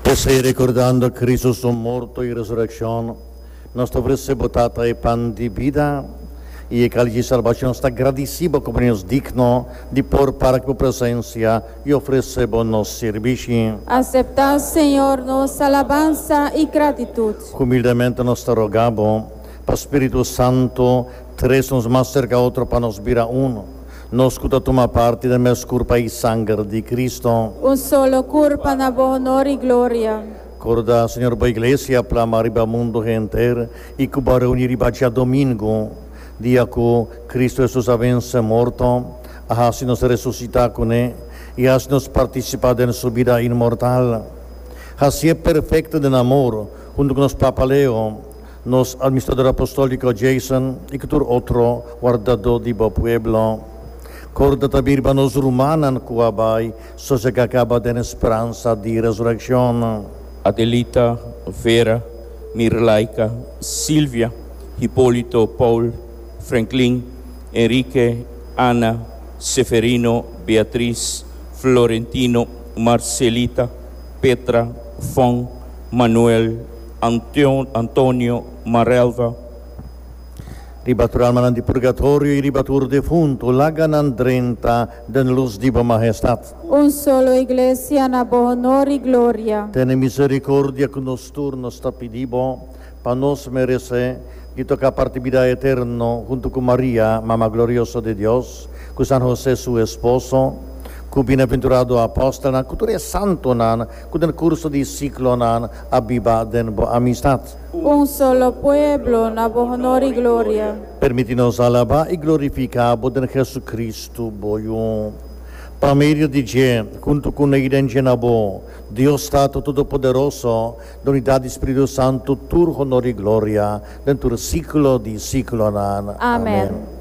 P'esei, rekordando Kristu su morto i resurekshon, nos ta ofresé bo Tata e pan di bida i e kálch di salbashon. Nos ta gradisí bo komo Dios digno di por para ku bo presensia i ofresé bo nos sirbishi. Aseptá, Señor, nos alabansa i gratitut. Humildamente nos ta rogá bo pa spiritu santu tres nos mas serka otro pa nos bira unu. Nos cu ta tuma parti den mes curpa y sanger di Cristo. Un solo curpa na bo honor y gloria. Corda, Señor, bo Iglesia plama riba mundo henter y cu bo a reuni riba dja domingo, dia cu Cristo Jesus a vence morto, a haci nos resucita cu ne y a haci nos participa den su bida inmortal. Haci'e perfecto den amor, hunto cu nos Papa Leo, Nos Administrador Apostolco Jason y cu tur otro wardadó di bo pueblo. Corda ta mirba nos rumannan cu a bai socia ca caba den e speransa di resurreccion. Adelita, Vera, Mirlaika, Silvia, Hipolito, Paul, Franklin, Enrique, Anna, Seferino, Beatriz, Florentino, Marcelita, Petra, Fon, Manuel, Antion, Antonio, Marelva. Riba tur almanan di purgatorio y riba tur defuntu, laga nan drenta den luz di bo Mahestad. Un solo Iglesia na bo honor y gloria. Tene misericordia cu nos tur, nos ta pidi bo, pa nos merece di toca parti bida eterno huntu cu Maria, Mama Glorioso di Dios, cu San Jose su esposo, cu Bienaventurado Apostelnan, cu tur e santonan, Ku den kurso di siklo nan a biba den bo amistat. Un solo pueblo na bo honor i gloria. Permiti nos alabá i glorifiká bo den Hesukristu, bo Yu. Pa medio di dje, huntu ku Nei den dje na bo, Dios Tatu Todopoderoso, lo unidat di Spiritu Santu tur honor i gloria den tur siklo di siklonan. Amèn.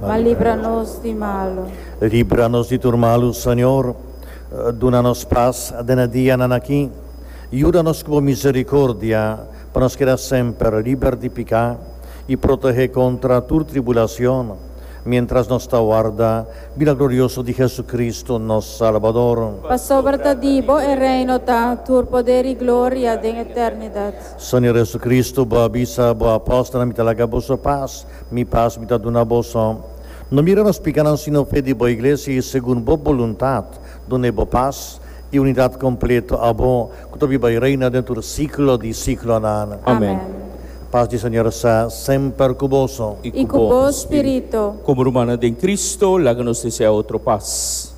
ma libra nos di malu. Libra nos di tur malu, Señor. Duna nos pas den e dianan aki. Yuda nos ku bo misericordia pa nos keda semper liber di piká i protehé kontra tur tribulacion, mientras nos ta warda bida glorioso di Jesucristo, nos Salbador. Pasobra ta di bo e reino ta, tur poder i gloria den eternidad. Señor Jesucristo, bo a bisa bo apostelnan, Mi ta laga boso pas. Mi pas mi ta duna boso. No mira nos picanan sino fe di bo iglesia y segun bo boluntad duna e bo pas y unidad completo abo cu ta biba y reina den tur siglo di siglonan. Amen. Pas di Señor sa semper cu boso. Y cu bo spirito. Como rumannan den Cristo, laga nos desea otro pas.